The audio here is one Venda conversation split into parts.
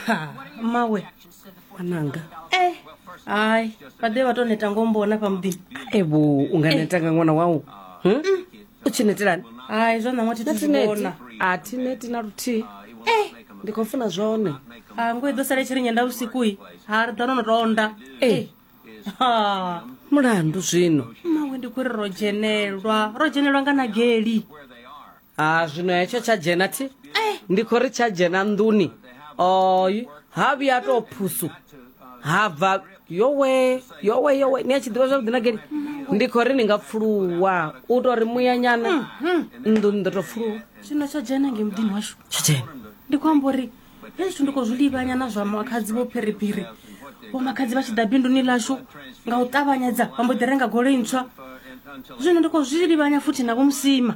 ha mawe ananga eh hayi vhaḓe vha tou neta ngombona pa muḓini evo u nga neta nga ṅwana wau Hm? u tshi netelani hayi zwa ṋaṅwa thi na thi zwi tineti vhona a thi neti na luthihi eh ndi khou funa zwone ha ngo i ḓo sala i tshi ri nyenda vhusikui ha ri ḓo no no tou onda Eh. ha mulandu zwino mawe ndi khou ri ro dzhenelwa ro dzhenelwa nga nageli ha zwino hetsho tsha dzhena thi eh. ndi khou ri tsha dzhena nḓuni oy ha vhuya a tou phusu ha bva yowe yowe yowe ni a tshi ḓivha zwavhuḓi na geni ndi khou ri ni nga pfuluwa u tou ri muyanyana mm, mm. nḓuni ḓo tou pfuluwa zwino tsha dzhena nge muḓini washu tsha dzhena ndi khou amba uri he zwithu ndi khou zwi livhanya na zwa makhadzi vho phiriphiri vho makhadzi vha tshi ḓa binduni lashu nga u ṱavhanyedza vha mbo ḓi renga goloi ntswa zwino ndi khou zwi livhanya futhi na vho musima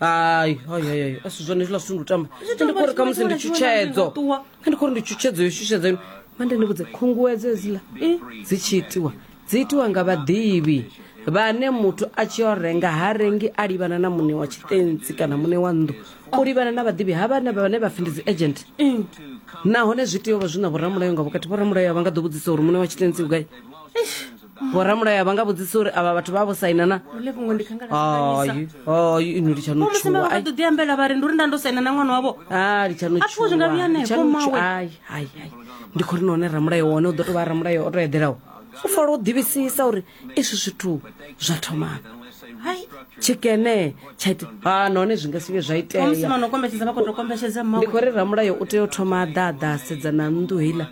hayi hayi hayi hayi asi zwone izviḽa zwithu ndi u tamba Zwi tamba ndikori khamusi ndi tshifhinga tshiṅwe na tshutshedzo tshiṅwe, ṱuwa. kha ndikori ndi tshutshedzo yo shushedza ino mande ndi vhudze khunguwedzo hedziḽa eh, dzi tshi itiwa dzi itiwa nga vhaḓivhi vhane muthu a tshi yo renga ha rengi a livhana na muṋe wa tshitentsi kana muṋe wa nnḓu u livhana na vhaḓivhi ha vhane vhane vha pfi ndi dzi agent nahone zwi tea u vha zwi na vhoramulayo nga vhukati vhoramulayo a vha nga ḓo vhudzisa uri muṋe wa tshitentsi u gai vhoramulayo vha nga vhudzisa uri avha vhathu vha vho saina na ino litshanutshuwa ḓo ḓiambela vha ri ndi uri nda ndo saina na ṅwana wavho a litshanutshuwaai ndi khou ri na one ramulayo wone u ḓo tou vha ramulayo o to eḓelaho u fala u ḓivhisisa uri izwi zwithu zwa thomana hai tshikene tsha ita ha nahone zwi nga si vhe zwa iteamusi mano kombetshedza vha khou to kombetshedza mmawe ndi khou ri ramulayo u tea u thoma a ḓa a ḓa a sedza na nnḓu heiḽa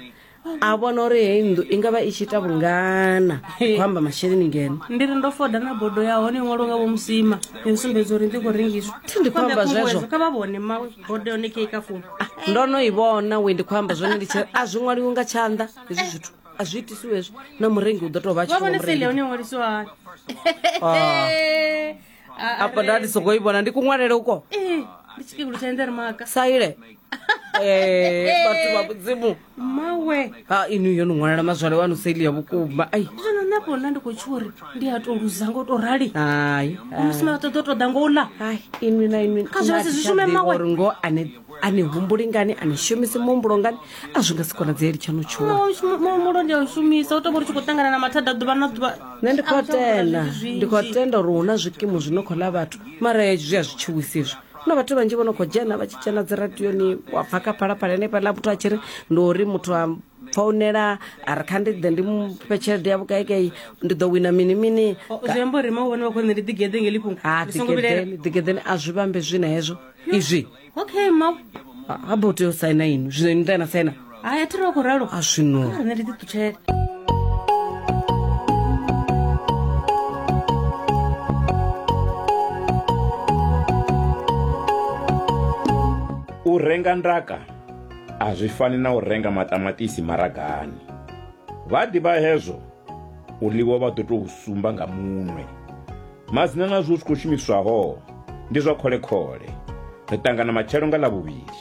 a vhona uri heyi nnḓu i nga vha i tshi ita vhungana u amba masheleni ngeno ndi ri ndo foda na bodo ya hone iṅwalo nga vho musima yo sumbedza uri ndi khou rengiswa Thi ndi khou amba Khombe khunguwedzo, zwezwo. kha vha vhone ma bodo yone kei ka founu ndo no i vhona we ndi khou amba zwone ndi tshi a zwi ṅwaliwi nga tshanḓa hezwi zwithu a zwi itisiwe hezwo na murengi u ḓo tou vha a tshi vha vhone sale ya hone iṅwalisiwa hani apa ndati sokoibona ndikuṅwalele uko Eh, ndi chikegulu cha endere maka saile Eh, batho ba bodzimu mawe ha inu yo ni ṅwalela mazwale wanu saili ya vhukuma ai zwino nṋe afho nna ndi khou tsho uri ndi a to luza ngo to rali hai musi maṱoḓo ṱoḓa ngo u ḽa hai inwi na inwi Kha zwi vha zwi shume mawe. uri ngo ane a ni humbuli ngani a ni shumisi muhumbulo ngani a zwi nga si konadzeli tshaṋu tshuwa muhumbulo ndi a u shumisa u tou vha ri tshi khou ṱangana na mathada ḓuvha na ḓuvha nṋe ndi khou tenda ndi khou tenda uri hu na zwikimu zwi no khou ḽa vhathu mara zwi a zwi tshiwisi izwo na vhathu vhanzhi vho no khou dzhena vha tshi dzhena dzi radioni wa pfa kha phalaphala henefhaḽa muthu a tshi ri ndi uri muthu a founela a ri kha ndi ḓe ndi mufhe tshelede ya vhukaikai ndi ḓo wina mini mini zwiamba uri ma vhone vha khou nṋe ndi ḓigeḓe ngeli fhungo ha ḓigeḓeni ḓigeḓeni a zwi vhambe zwi na hezwo izwi okay ma ha bo tea u saina ino zwino ini ḓa na saina hai a thi ri wa khou ralo a zwino rine ndi ḓiṱutshele u renga ndaka A zwi fani na u renga maṱamaṱisi maragani. Vha ḓivha hezwo u ḽiwa vha ḓo tou sumba nga munwe. Madzina na zwo zwi khou shumiswaho ndi zwa khole-khole. Ri ṱangana matshelo nga Ḽavhuvhili.